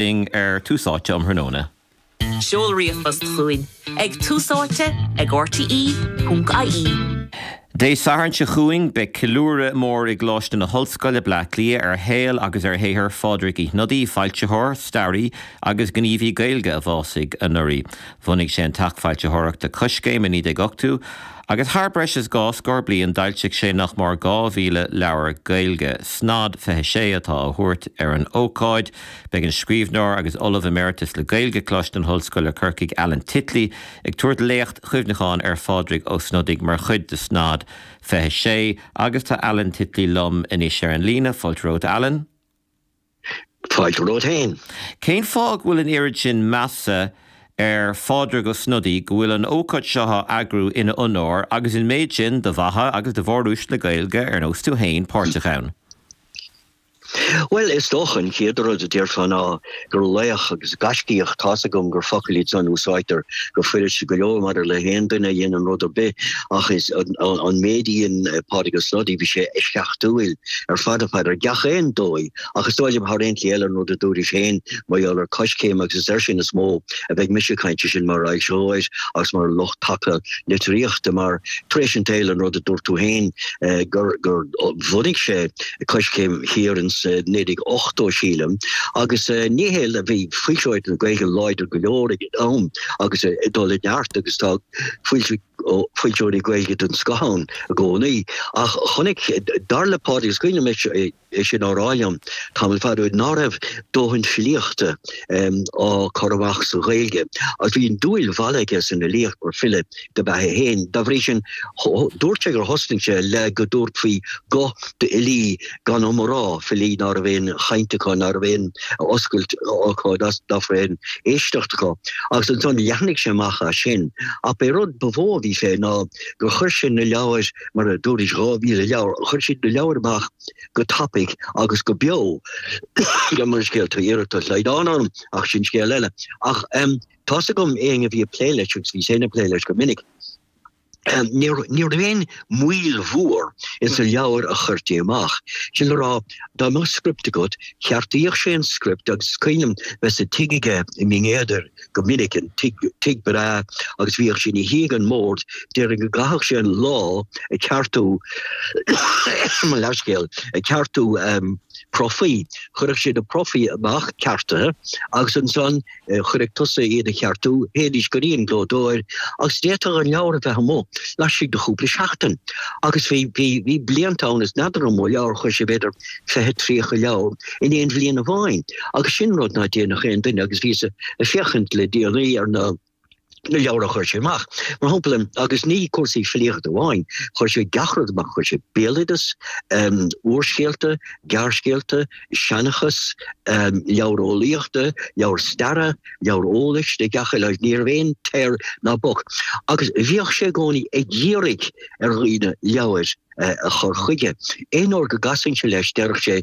Ding ar Tús Áite um thráthnóna. Seol ríomhphost chugainn ag túsáite ag rte.ie. Dé Sathairn seo chugainn beidh ceiliúradh mór i gColáiste na hOllscoile, Bleá Cliath ar shaol agus ar shaothar Phádraig Uí Shnodaigh, foilsitheoir, staraí agus gníomhaí Gaeilge a bhásaigh anuraidh. Bhunaigh sé an teach foilsitheoireachta Coiscéim i 1980 agus thar breis is dhá scór bliain d'fhoilsigh sé nach mór 2,000 leabhar Gaeilge. Snod 26 atá á thabhairt ar an ócáid. Beidh an scríbhneoir agus Ollamh Emeritus le Gaeilge Coláiste na hOllscoile Corcaigh Alan Titley ag tabhairt léacht chuimhneacháin ar Phádraig Ó Snodaigh mar chuid de Snod 26 agus tá Alan Titley liom anois ar an líne. Fáilte romhat, Alan. Fáilte romhat féin. Cén fáth go bhfuil an oiread sin measa ar Phádraig Ó Snodaigh go bhfuil an ócáid seo á eagrú ina onóir agus an méid sin de mhaithe agus de mhóruaisle Gaeilge ar nós tú féin páirteach ann? Bhuel, is dócha an chéad rud a déarfá ná gur laoch agus gaiscíoch tá's agam gur focail iad san a úsáidtear go fuiris go leor maidir le haon duine a dhéanann rud ar bith ach insan méid a dhein Pádraig Ó Snodaigh bhí sé eisceachtúil ar fad ar fad ar gach aon dóigh ach is dóigh liom thar aon ní eile an rud a dúrais féin mar gheall ar Coiscéim agus is air sin is mó a bheidh mise ag caint sin mar fhoilsitheoir agus mar lucht taca litríochta mar tar éis an tsaoil an rud a dúirt tú féin eh, gur gur bhunaigh sé Coiscéim thiar ins naoi déag ochtó, sílim, agus ní hé le bhí foilsitheoireacht na Gaeilge láidir go leor ag an am agus ag dul i neart agus tá foilsi- foilsitheoirí Gaeilge den scoth ann i gcónaí. Ach chonaic, dar le Pádraig, is cuimhin liom é é sin á rá liom tamall fada ó shin, ná raibh dóthain filíochta á cur amach sa Ghaeilge. Agus bhí an dúil mharbh aige san fhilíocht mar file, ab ea é féin. Dá bhrí sin, dúirt sé gur thosnaigh sé le go dtabharfaí guth d'fhilí gan ainm abair, filí ná raibh aon chaint acu, ná raibh aon oscailt acu, ná raibh aon éisteacht acu. Agus ansan leathnaigh sé amach as sin. Ach b'é rud ba mhó a bhí fé ná gur chuir sé na leabhair, mar a dúrais, 2,000 leabhar, chuir sé na leabhair amach go tapaidh agus go beo. Gabh mo leithscéal tá iarracht de shlaghdán orm, ach sin scéal eile. Ach Tá's agam éinne a bhí ag plé leis agus bhíos féin ag plé leis go minic. Ní raibh aon mhoill mhór ins an leabhar a chuirtí amach. Sin le rá, dá mbeadh script agat, cheartaíodh sé an script agus is cuimhin liom bheith sa tigh aige i mBinn Éadair go minic, an tigh breá agus bhíodh sé ina shuí ag an mbord, déarfainn go gcaithfeadh sé an lá ag ceartú mo leithscéal, ag ceartú profaí. Chuirfeadh sé na profaí amach ceartaithe agus ansan chaithfeadh tusa iad a cheartú, théidís go dtí an gclódóir agus d'fhéadfadh an leabhar a bheith amuigh laistigh de chúpla seachtain. Agus bhí, bhí, bhí blianta ann is n'fheadar an mó leabhar, chuir sé b'fhéidir 20, 30 leabhar in aon bhliain amháin agus sin rud ná déanfadh aon duine agus bhíos ag féachaint le déanaí ar na, na leabhair a chuir sé amach, mar shampla, agus ní cúrsaí filíochta amháin, chuir sé gach rud amach, chuir sé béaloideas, úrscéalta, gearrscéalta, seanchas, leabhair eolaíochta, leabhair staire, leabhair eolais de gach uile áit, ní raibh aon teir ná bac agus bhíodh sé i gcónaí ag iarraidh ar dhaoine leabhair a chur chuige. Aon uair go gcasfainnse leis, deireadh sé,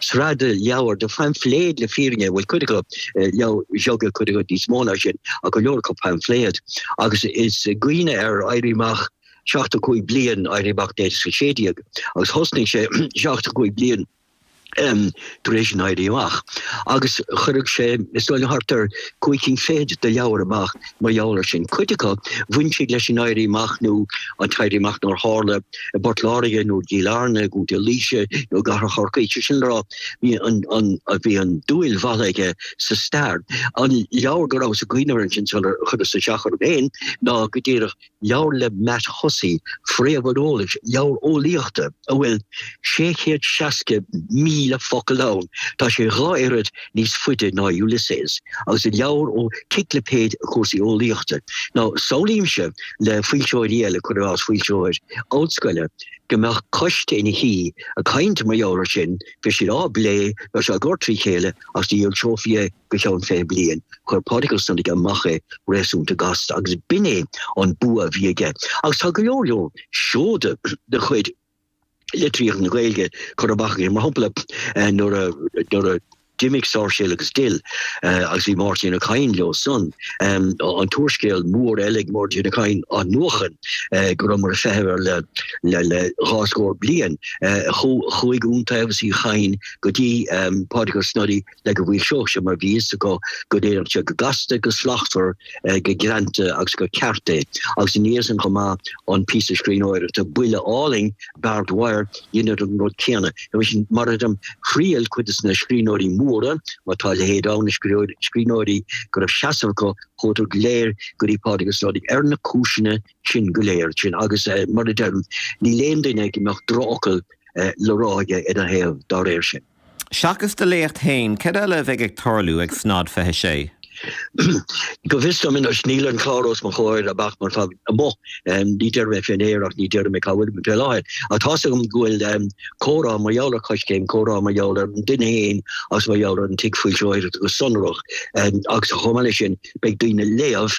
sraith leabhar de phaimfléid le fírinne, bhuel cuid acu leabhair bheaga, cuid acu níos mó ná sin, ach go leor acu paimfléad. Agus is ag cuimhneamh ar éirí amach 75 bliain, éirí amach 1916, agus thosnaigh sé 75 bliain tar éis an Éirí Amach. Agus chuirfeadh sé, is dóigh liom, thart ar chúig cinn fichead de leabhair amach Mar gheall ar sin, cuid acu, bhain siad leis an éirí amach nó an t-éirí amach nár tharla i bPort Láirge nó i gCill Airne nó i gContae Laoise nó i gcathair Chorcaí. Sé sin le rá, bhí an- an- a- bhí an dúil mhaith aige sa stair. An leabhar go rabhas ag cuimhneamh air ansin sular chuireas isteach orm féin ná go díreach Leabhar le Matt Hussey, Fréamh an Eolais, leabhar eolaíochta a bhfuil 660,000 focal ann, tá sé dhá oiread níos faide ná Ulysses, agus an leabhar ó ciclipéid de chúrsaí eolaíochta. Now, samhlaímse le foilsitheoir eile, cuir i gcás foilsitheoir ollscoile, go mbeadh coiste ina shuí ag caint mar gheall air sin, bheadh siad ag plé leis, ag cur trí chéile agus ní fhoilseofaí é. Go ceann fiche bliain, chuir Pádraig Ó Snodaigh amach é réasúnta gasta agus b'in é an bua a bhí aige agus tá go leor leor seoda de chuid litríocht na Gaeilge curtha amach aige, mar shampla nuair a nuair a d'imigh Sáirséal agus Dill agus bhí Máirtín Ó Cadhain leo san an t-úrscéal mór eile ag Máirtín Ó Cadhain Athnuachan go rabhamar ag feitheamh air le le le dhá scór bliain. Chuaigh Iontaobhas Uí Chadhain go dtí Pádraig Ó Snodaigh le go bhfoilseodh sé mar bhí fhios acu go ndéanfadh sé go gasta, go slachtmhar, go greanta agus go ceart é. Agus ina dhiaidh san chomh maith, an píosa scríbhneoireachta buile álainn, Barbed Wire, dheineadar an rud céanna. Agus, mar a deirim, thriail cuid des na scríbhneoirí móra, má tá a leithéid ann, na scríbhneoirí go raibh seasamh acu, chuadar go léir go dtí Pádraig Ó Snodaigh ar na cúiseanna sin go léir sin agus, mar a deirim, níl aon duine go mbeadh drochfhocal le rá aige ina thaobh dá réir sin. Seachas do léacht féin, cad eile a bheidh ag tarlú ag Snod 26? Go bhfios dom anois, níl an clár os mo chomhair ach mar tá amuigh, ní déarfaidh mé fé an aer ach ní déarfaidh mé cá bhfuilimid fé láthair. Ach tá's agam go bhfuil comhrá mar gheall ar Choiscéim, comhrá mar gheall ar an duine féin agus mar gheall ar an tigh foilsitheoireachta go sonrach agus chomh maith leis sin beidh daoine ag léamh,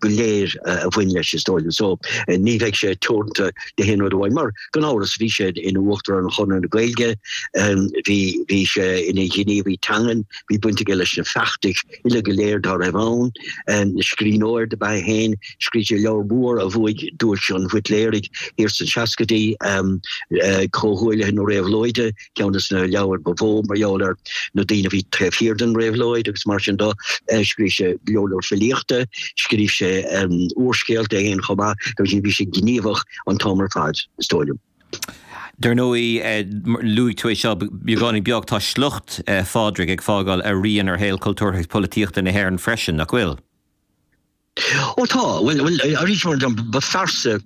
go léir a bhain leis is dóigh liom. So ní bheidh sé teoranta d'aon rud amháin mar gan amhras bhí sé ina uachtarán ar Chonradh na Gaeilge bhí bhí sé ina ghníomhaí teangan bhí baint aige leis na feachtais uile go léir dá raibh ann scríbhneoir dob ea é féin scrígh sé leabhar mór a bhuaigh Duais an Bhuitléirigh thiar sna seascaidí Comhghuaillithe na Réabhlóide ceann de na leabhair ba mhó mar gheall ar na daoine a bhí taobh thiar den réabhlóid agus mar sin do scríobh sé leabhar filíochta, scríobh sé úrscéalta féin chomh maith, agus sin bhí sé gníomhach an t-am ar fad, is dóigh liom. Dar ndóigh, luaigh tú é seo, beagáinín beag, tá sliocht Phádraig ag fágáil a rian ar shaol cultúrtha agus polaitíochta na hÉireann freisin, nach bhfuil? Ó tá, bhuel, arís mar ba phearsa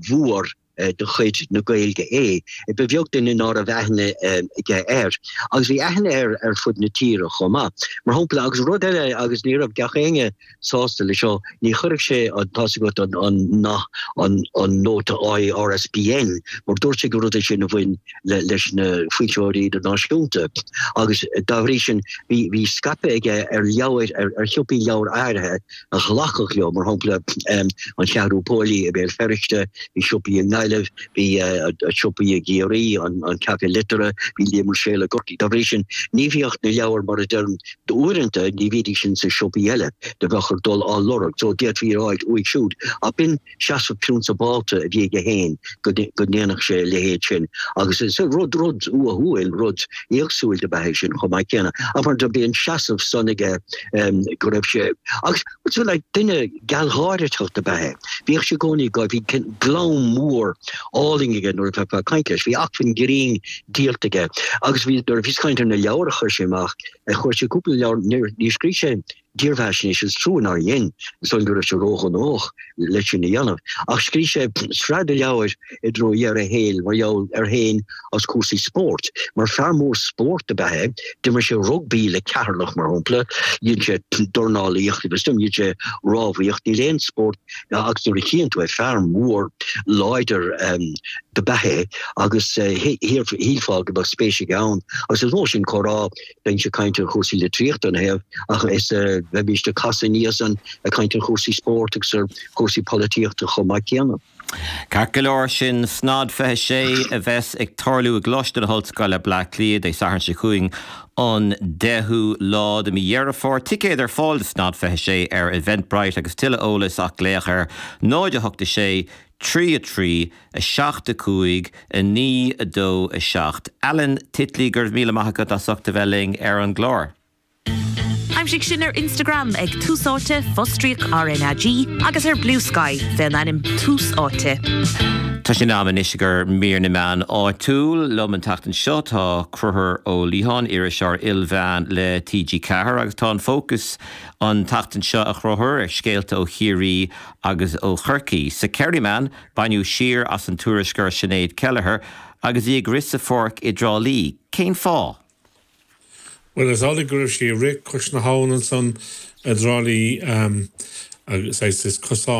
mhór de chuid na Gaeilge é. Ba bheag duine ná raibh aithne aige air, agus bhí aithne air ar fud na tíre chomh maith. Mar shampla, agus rud eile agus ní raibh gach éinne sásta leis seo, ní chuireadh sé an tá's agat an- an- na- an- an nóta ISBN, mar dúirt sé gur rud é sin a bhain le- leis na foilsitheoirí idirnáisiúnta. Agus dá bhrí sin, bhí- bhí scaipeadh aige ar leabhair, ar- ar shiopaí leabhar áirithe, a ghlacadh leo, mar shampla An Cheathrú Póilí i Béal Feirste, bhí siopaí i nGaillimh, bhí siopaí i gCiarraí, an Café Liteartha, bhí Liam Ruiséal i gCorcaigh. Dá bhrí sin, ní bhíodh na leabhair, mar a deirim, uaireanta ní bhídís ins na siopaí eile, do bheadh ort dul á lorg, so d'fhéadfá iad a fháilt uaidh siúd. Ach b'in. seasamh prionsabálta a bhí aige féin go ndéanfadh sé a leithéid sin agus is rud rud uathúil, rud éagsúil dob ea é sin chomh maith céanna ach mar do bhí an seasamh san aige go raibh sé agus tú le duine gealgháiriteach dob ea é bhíodh sé i gcónaí go bhí glam mór álainn aige nuair a bheifeá ag caint leis. Bhí acmhainn grinn diabhalta aige agus bhí nuair a bhíos ag caint ar na leabhair a chuir sé amach a chuir sé cúpla leabhar ní scrígh sé dírbheathaisnéis, is trua nár dhein, is dóigh go raibh sé ró-ghnóthach le sin a dhéanamh. Ach scrígh sé sraith de leabhair i dtreo dheireadh a shaoil mar gheall air féin is cúrsaí spóirt. Mar fear mór spóirt ab ea é, d'imir sé rugbaí le Ceatharlach mar shampla, dhein sé dornálaíocht agus dhein sé rámhaíocht, níl aon spórt agus nuair a chíonn tú é, fear mór láidir ab ea é agus shílfeá go mbeadh spéis aige ann. Agus is mó sin comhrá Deis cainte ar chúrsaí litríochta in aon áit is bheimís sásta níos mó cainte ar chúrsaí spóirt agus ar chúrsaí polaitíochta chomh maith céanna. Ceart go leor sin. SNAG 26 a bheas ag tarlú i gColáiste na hOllscoile, Bleá Cliath, Dé Sathairn seo chugainn, an 10ú lá de Mhí Dheireadh Fómhair. Ticéid ar fáil do SNAG 26 ar Eventbrite agus tuilleadh eolais ach glaoch ar 08 6 3 3 7, 5, 9, 2, 7, Alan Titley Go raibh míle maith agat as ucht a bheith linn ar an gclár. Aimsigh sinn ar Instagram ag Tús Áite, fostríoc RnaG, agus ar Bluesky fén ainm Tús Áite. Tá sé in am anois ag ár mír na meán áitiúil. Liom an tseachtain seo tá Crothúr Ó Liatháin, iriseoir ilmheán le TG Ceathair, agus tá an fócas an tseachtain seo, a Chrothúir, ar scéalta ó Chiarraí agus ó Chorcaí. Sa Kerryman, Baineadh siar as an tuairisceoir Sinéad Kelleher agus í ag rith sa pháirc i dTrá Lí. Cén fáth? Bhuel, is amhlaidh go raibh sí ag rith cois na habhann ansan i dTrá Lí, agus is cosán.